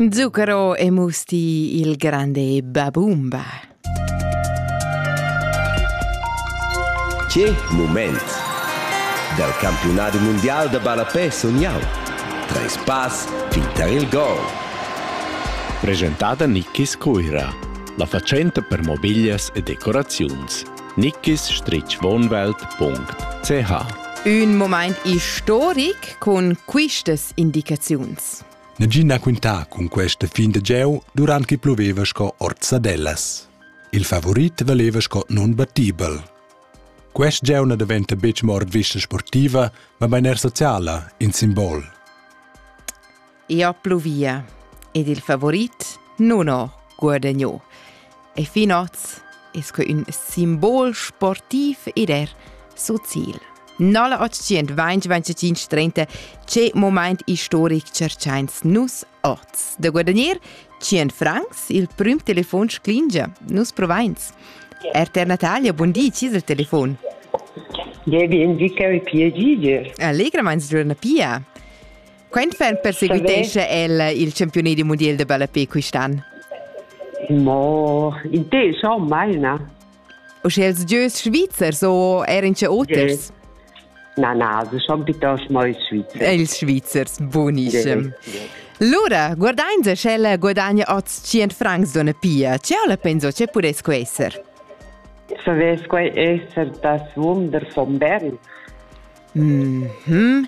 Zucchero e musti il grande Babumba. Che moment! Dal campionat mondial da ballapè sun jau. Treis pass fin tar il gol. Presentada Nikis Cuira, la fatschenta per mobiglias e decoraziuns. nickisstrichwohnwelt.ch Ün moment istoric cun quistas indicaziuns. Negin ha quintà cun questa fin da gieu durant che ploveva sco orzadellas. Il favorit valeva sco nunbattibel. Quest gieu na daventa betg mo ord vista sportiva, ma er sociala, in simbol. ia pluvia ed il favorit non ho guadagno. E fin oz es que ün simbol sportiv ed er sozial. 0825 che moment historic cerchains nus oz. Da guadagnir 100 francs il prim telefon sclingia, nus provains. RTR Natalia, buon di, ci è il telefon? Devi indica il piedi. Allegra mans giorna pia. Quentfeld perseguitescha el il campiunat du mondial de ballape quist'an? Mo in te schau mai na. O schels gieus svizzers o er in oters? Yeah. Na, na, se schon bitte mal ils Svizzers. Ils Svizzers, buonissimo. Lura, guardain se sch'ella guadagna oz 100 francs d'una pia, ce la penso che puresco esser? Savesco essere das Wunder von Bern. Mm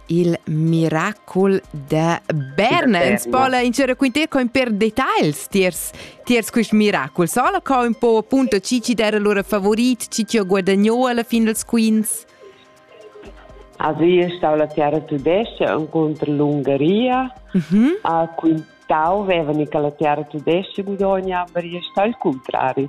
il miracol da Bernens pola in c'era quinter con per details tiers tiers quist miracol sola co un po appunto ci ci era lura favorit ci ci ho guadagno alla fin dels quins Asi è stata la terra tudesca contro l'Ungaria mhm a quintau vevani che la terra tudesca guadagna ma è stato il contrario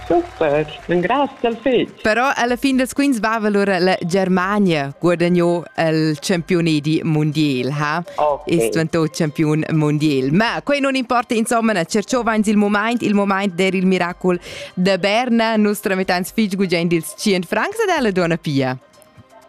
Super, engraziel fetg. Però alla fin dels quints vava lura la Germania guadagnò il campione di mondial, ha? Okay. Ist diventò campion mondial. Ma quei non importa, insomma, cerchova ins il moment, il moment der il miracol de Berna, nostra metans fitg gugent dils 100 francs ed alla donna pia.